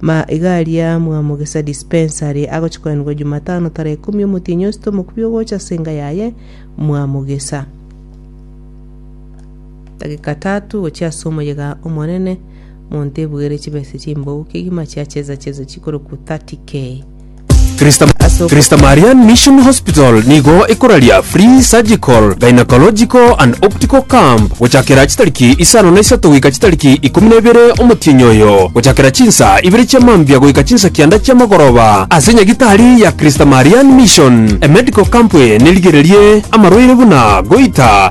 Ma iga aria mwamogesa dispensary agochia koenigwa Jumatano tarehe ikomi omotienyi osete omokubi ogocha ase enga yaye mwamogesa. Dagika tatu gochia ase omoyega omonene, monto ebuere chibesa chimbou kegima chiacheza cheza chikoroku 30k. Christamarian Mission Hospital nigo ekoraria Free Surgical, Gynecological and Optical Camp gochakera chitariki isano na isato goika chitariki ikomi na ibere omotienyi oyo, gochakera chinsa ibere chia mambia goika chinsa kianda chi'amagoroba ase nyagitari ya Christamarian Mission. Emedical Camp eye nerigererie amarwaire buna goita,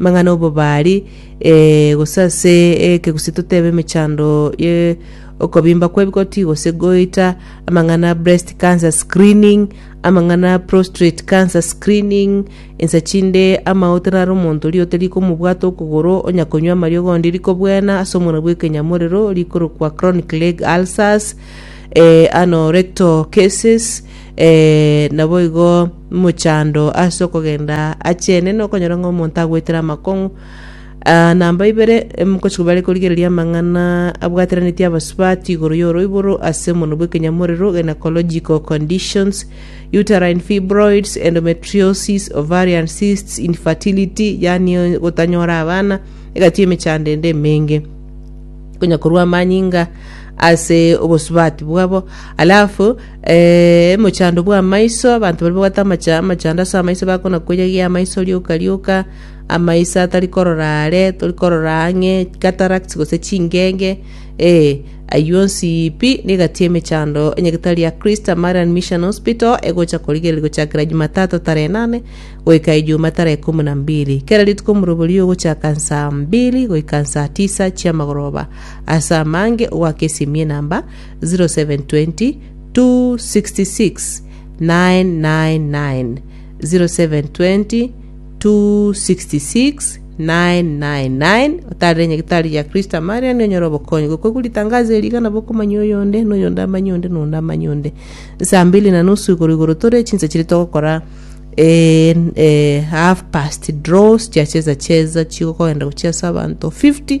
amang'ana 'obobari, eh, gose ase ekegusii totebe emechando ye okobimba kw'ebigoti gose goita, amang'ana a breast cancer screening, amang'ana a prostrate cancer screening, ensa chinde amaote naro omonto riote rikomobwata okogoro, onya konywa amariogo onde rikobwena ase omona bw'ekenyamorero, rikorokwa chronic leg ulcers, eh, anorectal cases, eh, naboigo. mochando ase okogenda aachene nokonyora ng'a omonto agwetire amakong'u Ah, namba ibere mkochiko bare korigereria amang'ana abwateranetie abasubati igoro y'oroiboro ase omono bw'ekenyamorero gynecological conditions uterine fibroids endometriosis ovarian cysts infertility yani gotanyora abana egati emechando ende emenge konya korwa amanyinga ase obosubati bwabo alafu Ee, mochando bw'amaiso, abanto baria babwate amache amachando ase amaiso bakona koiya gie amaiso rioka rioka, amaiso atari korora aare, tori korora ang'e, cataracts gose chingenge, ee, ayio onsi pi negati emechando enyagitari ya Christ Samarian Mission Hospital egocha korigereria gochakera Jumatatu tarehe nane goika Ejuma tarehe ikomi na mbili. Kera rituko omoroberio ogochaka nsaa mbili goika nsaa tisa chiamagoroba. Ase amange ogwaka esimie namba 0720 266 999 0720 266 999 otarire nyagitari gia kristo amare ane onyore obokonyi gokoigwa ritangazo eri iga nabo okomanya oyonde na oyonde amanye onde na onde amanye onde saa mbili na nusu igoro igoro tore chinsa chiri togokora eh, eh, half past draws chiacheza cheza chigokogenda gochia ase abanto 50